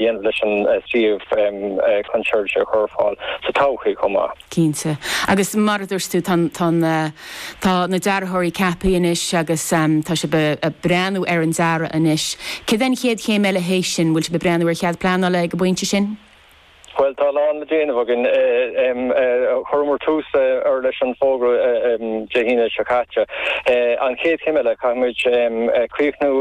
dhéanamh leis an suíomh chun seirbhísí a chur ar fáil sa todhchaí chomh maith. Cinnte. Agus mar a dúirt tú, tá na dearthóirí ceaptha anois agus tá sibh ag breathnú ar an dearadh anois. Cad é an chéad chéim eile théis sin? Bhfuil sibh ag breathnú ar cead pleanála ag an bpointe sin? Bhuel, tá a lán le déanamh againn. Chuireamar tús leis an bhfógra Dé hAoine seo caite. An chéad chéim eile, caithfidh muid críochnú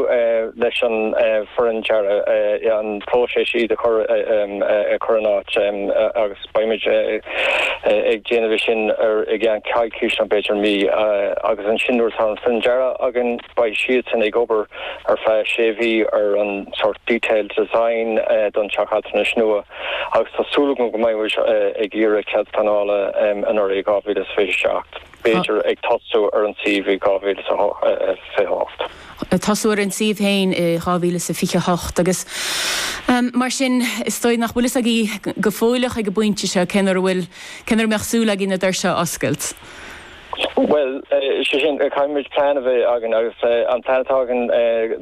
leis an foireann dearaidh, an próiseas, iad a chur in áit agus beidh muid ag déanamh é sin i gceann coicís nó b'fhéidir mí agus ansin nuair atá an foireann dearaidh againn beidh siadsan ag obair ar feadh sé mhí ar an sort detailed design don teach altranais nua agus tá súil againn go mbeidh muid ag iarraidh cead pleanála anuraidh 2027. b'fhéidir ag tosú ar an suíomh i 2028. ag tosú ar an suíomh féin i 2028 agus mar sin is dóigh nach bhfuil fhios agaibh go fóilleach ag an bpointe seo cén uair a bhfuil, cén uair a mbeadh súil agaibh na doirse a oscailt. Bhuel, sé sin, caithfimid plean a bheith againn agus an plean atá againn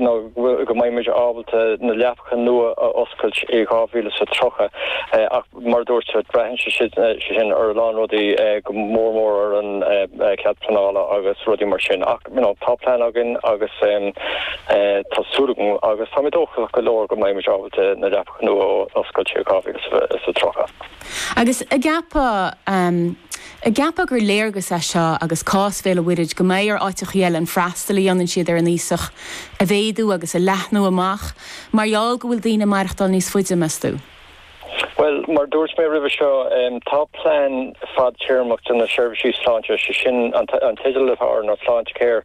ná go mbeidh muid ábalta na leapacha nua a oscailt i 2030 ach, Mar a dúirt, braitheann sé sin ar a lán rudaí, go mór mór ar an cead pleanála agus rudaí mar sin ach tá plean againn agus tá súil agam agus tá mé dóchasach go leor go mbeidh muid ábalta na leapacha nua a oscailt i 2030. Agus an gceapfá gur léargas é seo agus cás Bhéal an Mhuirthead go mbeidh ar áiteachaí eile an freastal a dhéanann siad ar an aosach a mhéadú agus a leathnú amach mar gheall go bhfuil daoine maireachtáil níos faide, meas tú? Bhuel, mar a dúirt mé roimhe seo, tá plean fadtéarmach do na seirbhísí sláinte, sé sin an teideal atá air ná Sláintecare,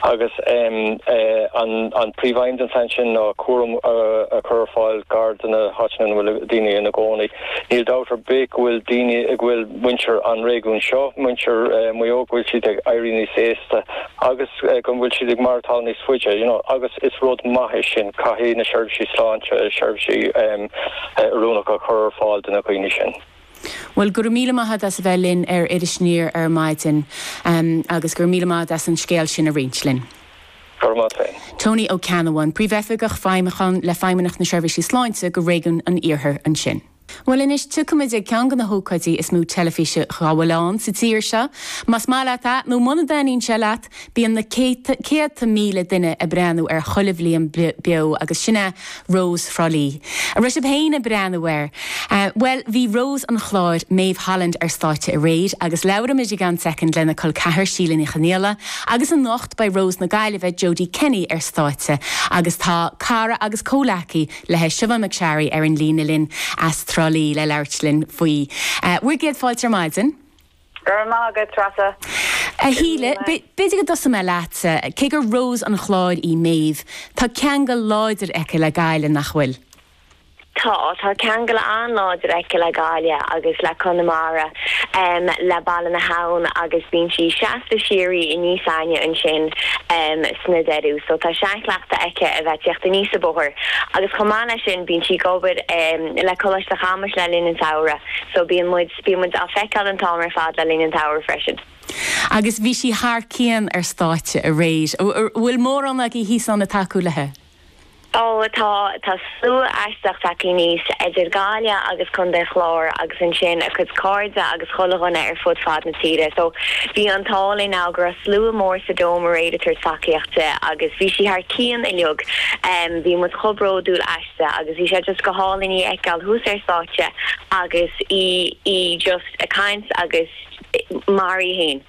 agus an príomhaidhm den phlean sin ná cúram a chur ar fáil gar do na háiteanna ina bhfuil daoine ina gcónaí. Níl dabht ar bith go bhfuil daoine, go bhfuil muintir an réigiúin seo, muintir Mhaigh Eo, go bhfuil siad ag éirí níos aosta. agus go bhfuil siad ag maireachtáil níos faide you know agus is rud maith é sin caithfidh na seirbhísí sláinte seirbhísí oiriúnacha a chur ar fáil do na dhaoine sin. Bhuel go raibh míle maith agat as a bheith linn ar Iris Aniar ar maidin agus go raibh míle maith agat as an scéal sin a roinnt linn. Go raibh maith agat. Tony Ó Ceannabháin, Príomhoifigeach Feidhmiúcháin le Feidhmeannacht na Seirbhísí Sláinte do Réigiún an Iarthair ansin. Bhuel anois, tiocfaidh muid ag ceann de na hócáidí is mó teilifíse dá bhfuil ann sa tír seo. Más maith leat é nó muna dtaitníonn sé leat, bíonn na céadta, céadta míle duine ag breathnú air chuile bhliain beo agus sin é Rós Thrá Lí. An raibh sibh féin ag breathnú air? Bhuel, bhí Rós an Chláir, Maeve Holland ar stáitse aréir agus labhróidh muid i gceann soicind lena col ceathar Síle Ní Chonghaile agus anocht beidh Rós na Gaillimhe, Jodie Kenny ar stáitse agus tá cara agus comhleacaí, le Siubhán McSharry ar an líne linn as Trá Lí le labhairt linn faoi bhur gcéad fáilte ar maidin. Go raibh maith agat, Treasa. A Shíle, b'fhéidir go dtosóidh mé leat. Cé gur Rós an Chláir í Maeve, tá ceangal láidir aici le Gaillimh, nach bhfuil? Tá, tá ceangal an-láidir aici le Gaillimh agus le Conamara, le Baile na hAbhann agus bíonn sí seasta síoraí aníos againne ansin. sna deireadh so tá seanchleachtadh aici a bheith ag tíocht aníos an bóthar agus chomh maith leis sin bíonn sí ag obair le Coláiste Chamuis le linn an tsamhraidh so bíonn muid, bíonn muid á feiceáil an t-am ar fad le linn an tsamhraidh freisin. Agus bhí sí thar cionn ar stáitse aréir. An bhfuil mórán agaí thíos ann ag tacú léithi? Ó tá, tá slua aisteach tagthaí aníos, idir Gaillimh agus Contae an Chláir agus ansin a cuid cairde agus chuile dhuine ar fud fad na tíre. So bhí an t-ádh linn em go raibh slua mór sa Dome aréir ag tabhairt tacaíocht di agus bhí sí thar cionn uilig. Bhí muid chomh bródúil aisti agus bhí sé just go hálainn í a fheiceáil thuas ar stáitse agus í, í just ag caint agus mar í fhéin.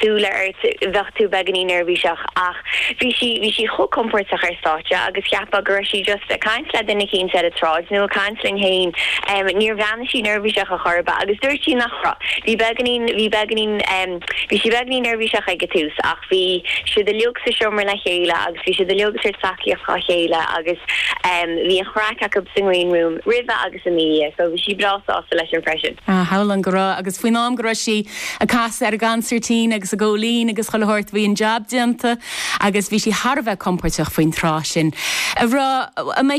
súile ort, bheadh tú beagainín neirbhíseach ach bhí sí, bhí sí chomh compóirteach ar stáitse agus cheapfá go raibh sí just ag caint le duine eicínt ar an tsráid nó ag caint linn fhéin. Em níor bhreathnaigh sí neirbhíseach ar chor ar bith agus dúirt sí nach raibh, bhí beagainín, bhí beagainín em bhí sí beagainín neirbhíseach ag an tús ach bhí siad uilig sa seomra le chéile agus bhí siad uilig ag tabhairt tacaíocht dhá chéile agus em bhí an chraic acub sa ngreen room roimhe agus ina dhiaidh so bhí sí breá sásta leis sin freisin. Ah shamhlóinn go raibh agus faoin am go raibh sí ag casadh ar an gconsairtín agus ag gabháil fhoinn agus chuile shórt bhí an jab déanta agus bhí sí thar a bheith compóirteach faoin tráth sin a rá a mbeidh sí